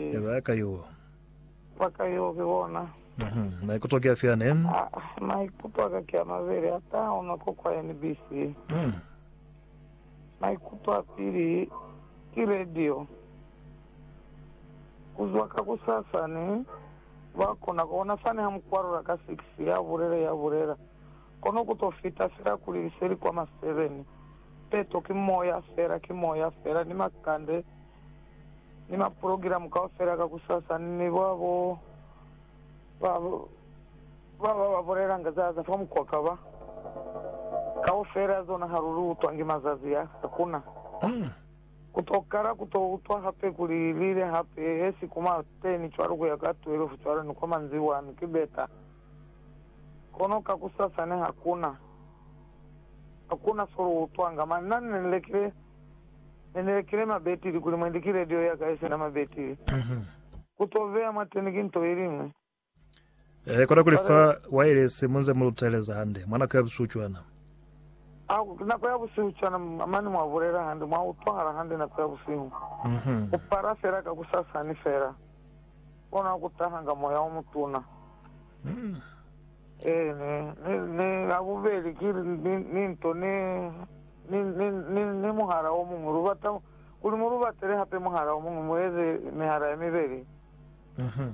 Ya ba ka yo. Ba ka yo ki bona. Mhm. Maikuto ki afi ane? Ah, maikuto aka ki a mabeli, ata ona ko kwa NBC. Mhm. Maikuto a pili ki radio. Kuzwa ka kusasa ni ba kona ku bona fani ha mukwalula ka six, ya bulela, ya bulela, kono ku to fita fela kuli li se li kwa ma seven. Peto ki moya fela, ki moya fela, ni makande ni maprogilamu kaufela kakusasa, mi ba bo ba ba ba ba bulelanga za za fa mukwaka ba kaufela zona ha lu utwa ngi mazazi a sa kuna. Ku to kala ku to utwa hape kuli li li hape he si kuma teni cwalo ku ya ka 12 cwalo ni kwa manzibwani ki beta. Kono kakusasa ne hakuna, hakuna so lu utwanga. Mani na ni lekile. Ne ni lekile mabetili kuli mwendi ki radio yaka yesina mabetili. Ku to beya mwateni ki nto yeliñwi. Eehe, kona kuli fa wailesi munze mu luteleza hande, mwa nako ya busihu cwana. A, ku nako ya busihu cwana, mane mwa bulela hande, mwa utwahala hande nako ya busihu. Ku para fela kakusasa ni fela, kona ku tahanga moya omutuna. Ee, ne, ne, ne, habubeli ki, ni, ni nto ne. ni, ni, ni, ni muhala o muñwi. Lu bata kuli mu lu batele hape muhala o muñwi, mu eze mihala ye mibeli. Uh-huh.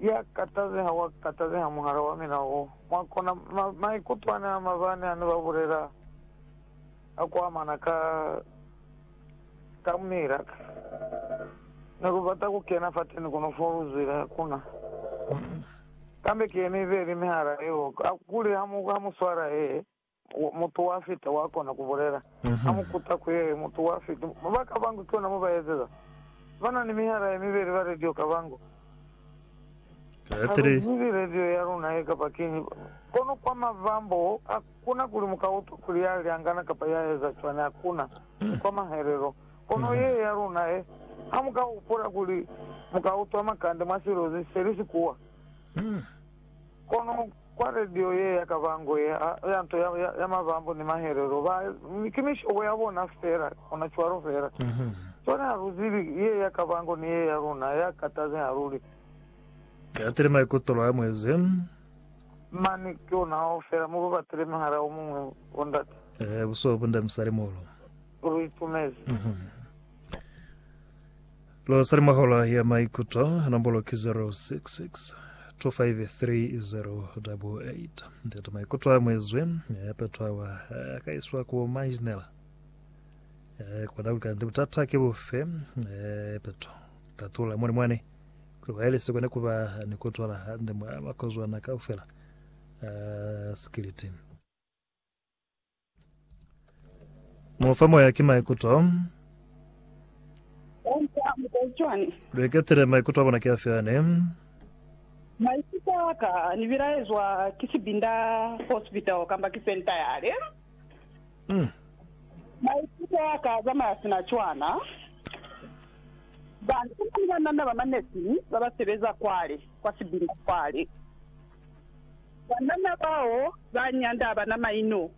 Ya katazeha, wa katazeha muhala wa mina wo. Mwa kona, ma, maikutwani a mabani hane ba bulela a ku amana ka, ka mila. Ne lu bata ku kena fateni kuno fo lu zwile, hakuna. Kambe ki ye mibeli mihala yeo, kuli ha mu, ha mu swala ye. Mutu wa fita wa kona ku bulela. A mu kuta ku ye, Mutu wa fita. Ba ka bangu ki ona mo ba ezeza. Ba na ni mihala ye mibeli ba radio ka bangu. Ha lu zibi radio ya luna ye kapa kiñi. Kono kwa mavambo, hakuna kuli mu ka utwa kuli ya lyangana kapa ya eza cwani. Hakuna. Ni kwa mahelelo. Kono ye ya luna ye, ha mu ka hupula kuli mu ka utwa makande mwa silozi se li si kuwa. Kono. Kwa radio ye ya kabango ye a ya nto ya ya ya mabambo ni mahelelo ba ki mishobo ya bona fela ona cwalo fela cwale ha lu zibi ye ya kabango ni ye ya luna ya kataze ha lu li Ki atile maikutolo a mwezi. mani ki ona hao fela mu babatile muhala o muñwi bo ndate. Ehe buso bu nda musali muhulu. Lu itumezi. Lu sa li mwa Hola ya Maikuto, nombulo ki 0662530888. Ntate Maikuto a mwezwi, mi a petwawa, a ka iswa ku Manjinela. Eh, kwa Dauli kanti butata ki bufe? Eh, peto. Tatula muli mwani, kuli waili si kone kuba ni kutwala hande mwa makozwana kaufela a sikiliti. Mu fa moya ki maikuto. Onse a mu tazi cwani? Lu iketile maikuto a bona ki afi ani? Maikuto a ka ni bilaezwa ki sibinda, hospital kamba ki senta yale. Maikuto a ka a zamaya sina cwana. Ba nuna ni banana ba manesi ba ba sebeza kwale, kwa sibinda kwale. Banana bao ba nyanda abana maino.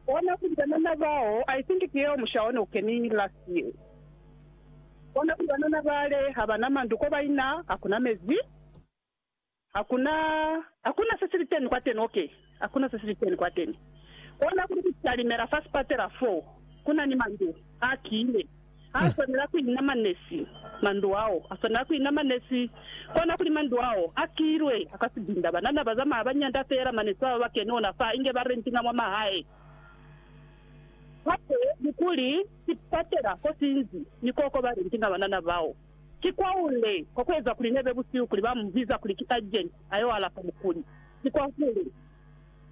Bona kuli banana bao, I think ki yeo musha one ukeningi last year. Bona kuli banana bale habana mandu ko baina, hakuna mezi, hakuna, hakuna se sili teni kwateni, ok, hakuna se sili teni kwateni. Bona kuli kutalimela fa sipatela foo kunani mandu a kile. Ha a swanela ku inama nesi mandu ao. A swanela ku inama nesi kona kuli mandu ao a kilwe ka sibinda. Banana ba zamaya ba nyanda feela mane si baba ba keni ona fa, inge ba rentinga mwa mahae. Hape ni kuli ki patela ko sinzi ni koko ba rentinga banana bao. Ki kwahule kwa ku eza kuli nebe busihu kuli ba mu biza kuli ki agent a yo alafa mukuli. Ki kwahule.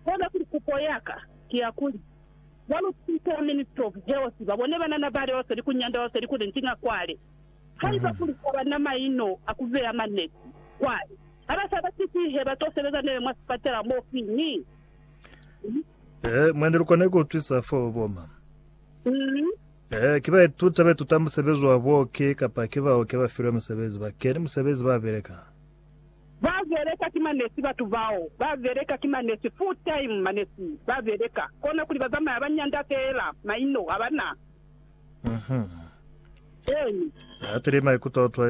Kona kuli kupo ya ka ki ya kuli. Ba lukisa ya Ministry of Health ba bone banana bale wa seli ku nyanda wa seli kuli nti nga kwale. Haiba kuli ha ba na maino a ku beya maneti kwale, ha ba sa ba siti he ba to sebeza nebe mwa sipatela mo fi ni? Ee, mwa ni lu kona ku utwisa fo ba boma. Mm. Ee, ki ba ituta ba ituta musebezi wa buoki kapa ki baoki ba filwe musebezi ba keni musebezi ba beleka. Ba beleka ki manesi batu bao. Ba beleka ki manesi full time manesi ba beleka kona kuli ba zamaya ba nyanda feela maino abana. Eeni. Ba atile maikuto a u twaiza.